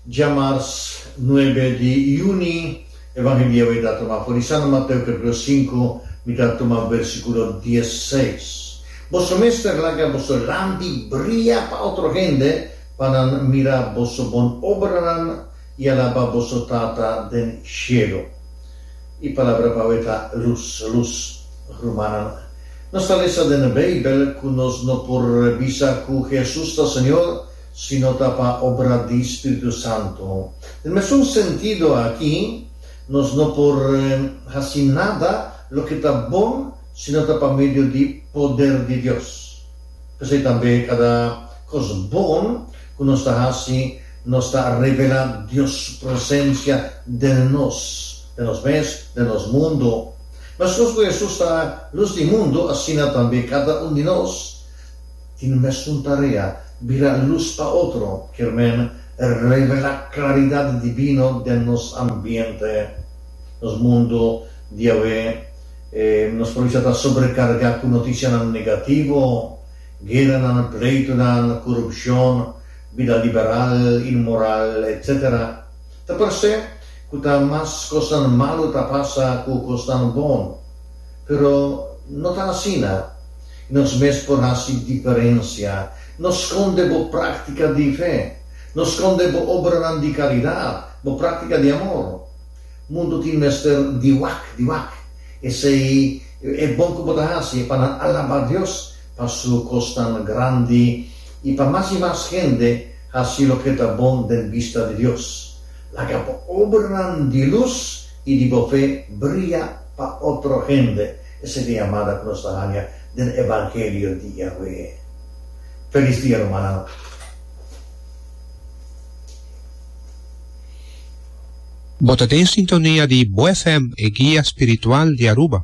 Djamars nuebe di juni, Evangelio mi ta tuma for di Santo Mateo capitulo sinku, mi ta tuma versikulo dies seis. Boso mester laga boso lampi bria pa otro hende, pa nan mira boso bon obranan i alaba boso Tata den shelu. E palabra pa awe ta lus, luz. Rumannan, nos ta lesa den e Beibel ku nos no por bisa ku Hesus ta Señor sino ta pa obra di Spiritu Santu. Den mesun sentido aki, nos no por hasi nada loke ta bon sino ta pa medio di poder di Dios. P'esei tambe kada kos bon ku nos ta hasi nos ta revelá Dios su presensia den nos, den nos mes, den nos mundu. Meskos ku Hesus ta lus di mundu, asina tambe kada un di nos tin mesun tarea, bira lus pa otro, kier men revelá klaridat divino den nos ambiente, nos mundu diawe. Nos por bisa ta sobrekargá ku notisianan negativo, gueranan, pleitunan, korupshon, bida liberal, inmoral, etc. Ta parsé ku ta mas kosnan malu ta pasa ku kosnan bon, pero no ta asina i nos mes por hasi diferensia. No skonde bo práktika di fe. No skonde bo obranan di karidat, bo práktika di amor. Mundu tin mester di wak, di wak. Esei e bon ku bo ta hasi, e pa nan alabá Dios pa Su kosnan grandi i pa mas i mas hende hasi loke ta bon den bista di Dios. Laga bo obranan di lus i di bo fe bria pa otro hende. Esei ta e yamada ku nos ta haña den evangelio di Yahweh. Felis dia rumannan. Bo ta den sintonia di Bo FM, e guia spiritual di Aruba.